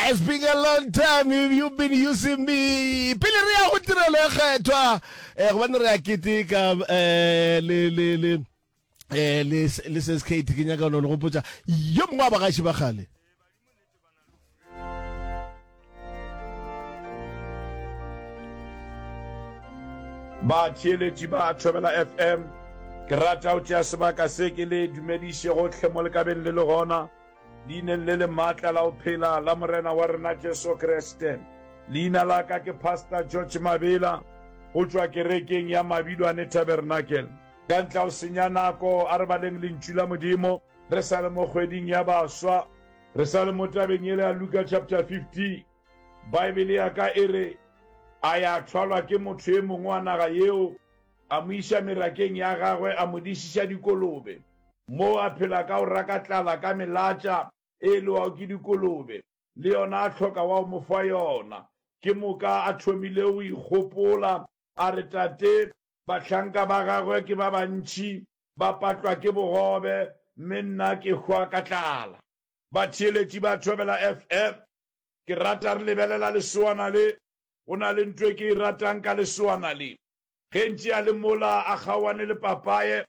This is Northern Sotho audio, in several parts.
It's been a long time if you've been using me. Pele re ya go tirelo e kgethwa, eh, gobane re a keteka eh, le, le, le, eh, le, le ses Kate, ke nyaka no le gopotsa yo mongwe wa bagaši ba kgale. batheeletši ba thobela fm ke rata o tšea sebaka se ke le dumediše gotlhe mo lekabeng le le gona Leineng le le maatla la go phela la Morena wa rena Jesu Kriste, leina la ka ke Pastor George Mabela go tšwa kerekeng ya Mabilwane Tabernacle. Ka ntle ga go senya nako, a re baleng Lentšu la Modimo re sa le mo kgweding ya baswa. Re sa le mo tabeng yela ya Luka chapter 15, Baebele ya ka e re, A ya thwalwa ke motho e mongwe wa naga yeo A mo iša merakeng ya gagwe, a mo dišiša dikolobe. Moo a phela ka go raka tlala ka melatša e e lewago ke dikolobe, le yona a hloka wa go mo fa yona. Ke moka a thomile go ikgopola, a re, Tate, bahlanka ba gagwe ke ba bantši, ba patlwa ke bogobe, mme nna ke hwa ka tlala. Batheeletši ba Thobela FM, Ke rata re lebelela lesoana le. Go na le nto e ke e ratang ka lesoana le. Gentši a le mola a kgaoane le papaye,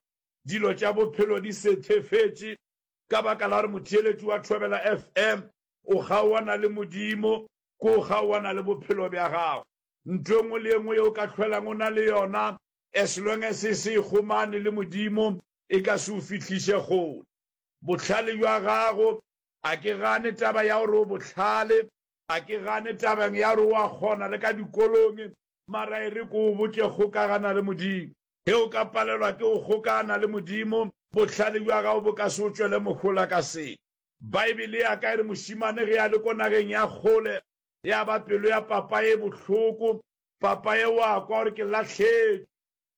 dilo tša bophelo di sethefetše ka baka la gore motheeletši wa Thobela FM o kgaoana le Modimo, ke o kgaoana le bophelo bja gago. Ntho e nngwe le e nngwe yeo o ka hlwelago o na le yona, as long as e se e kgomane le Modimo, e ka se o fihliše kgole. Bohlale bja gago, a ke gane taba ya gore o bohlale, a ke gane tabeng ya gore o a kgona le ka dikolong, Mara e re ke o botše, kgokagana le Modimo. Ge o ka palelwa ke go kgokagana le Modimo, bohlale bja gago bo ka se o tšwele mohola ka selo. Baebele ya ka e re mošemane ge a le ko nageng ya kgole, ya ba pelo ya papaye e bohloko. Papaye o a kwa gore ke lahletšwe.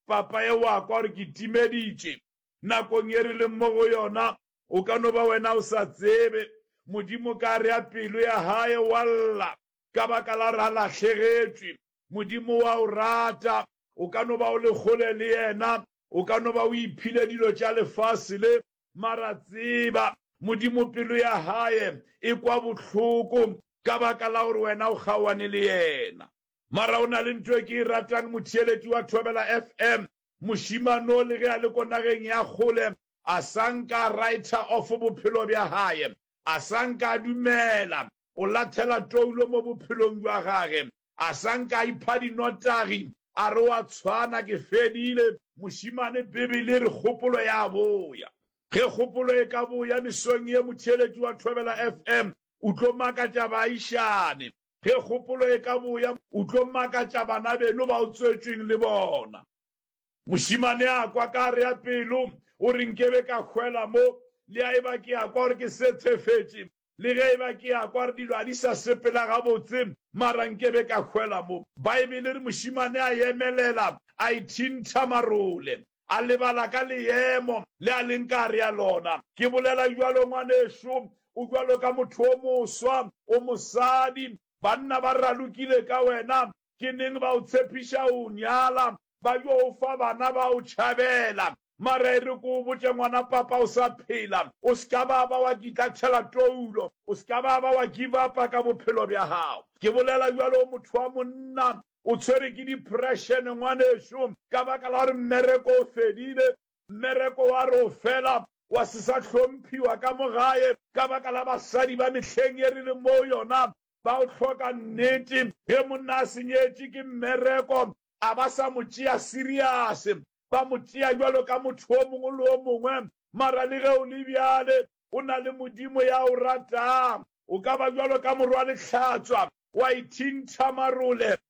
Papaye o a kwa gore ke timeditše. Nakong ye re leng mo go yona, o ka no ba wena o sa tsebe, Modimo ka re ya pelo ya gae wa lla. ka baka la ra lahlegetšwe. Modimo wa o rata. O ka no ba o le kgole le Yena. O ka no ba o iphile dilo tša lefase le. Mara tseba, Modimo pelo ya Hae e kwa bohloko ka baka la gore wena o kgaoane le Yena. Mara go na le nto e ke e ratang, motheeletši wa Thobela FM, mošemane o, le ge a le ko nageng ya kgole, a sa nka a writer off bophelo bja hae. a sa nka a dumela go lathela toulo mo bophelong bja gage, a sa nka a ipha dinotagi a re o a tshwana, ke fedile. Mošemane, Bibele e re kgopolo ya boya. Ge kgopolo e ka boya mesong ye, motheeletši wa Thobela FM o tlo makatša baagišane. Ge kgopolo e ka boya, o tlo makatša banabeno ba o tswetšweng le bona. Mošemane a kwa ka re ya pelo, o re nke be ka hwela mo, le a eba ke a kwa gore ke sethefetše, le ge eba ke a kwa gore dilo a di sa sepela gabotse, mara nke be ka hwela mo. Baebele e re mošemane a emelela, a ithintha marole, a lebala ka leemo le a leng ka re ya lona. Ke bolela bjalo, ngwanešu, o bjalo ka motho o moswa, o mosadi, banna ba ralokile ka wena, Ke neng ba o tshepiša o nyala? Ba yo o fa bana ba o tšhabela. Mara e re ke o botše ngwana papa o sa phela, o se ka ba ba wa kitla tšhela toulo, o se ka ba ba wa give upa ka bophelo bja gago. Ke bolela bjalo o motho wa monna, o tshwere ke depression ngwanešu ka baka la gore mmereko o fedile, mmereko wa re o fela, wa se sa hlomphiwa ka mo gae ka baka la basadi ba mehleng ye re leng mo go yona. ba o hloka nnete. Ge monna a senyetše ke mmereko, a ba sa mo tšea seriase, ba mo tšea bjalo ka motho o mongwe le o mongwe. Mara le ge o le bjale, o na le Modimo ya o ratang. O ka ba bjalo ka morwa lehlatswa, wa ithintha marole,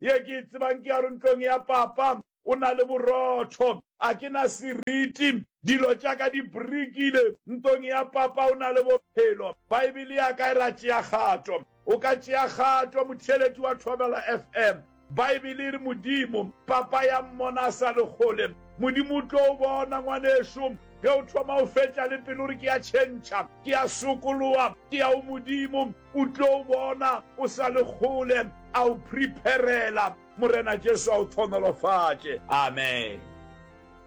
Ye ke e tsebang ke ya gore ntlong ya Papa go na le borotho. A ke na seriti. Dilo tša ka di brikile. Ntong ya Papa go na le bophelo. Baebele ya ka e ra tšea kgato. O ka tšea kgato, motheeletši wa Thobela FM. Baebele e re Modimo, Papa ya mmona a sa le kgole. Modimo o tlo o bona, ngwanešu, ge o thoma o fetša le pelo gore ke ya tšhentšha, ke ya sokoloa, ke ya go Modimo. O tlo o bona o sa le kgole, a o prepare-la. Morena Jesu a o thonolofatše. Amen.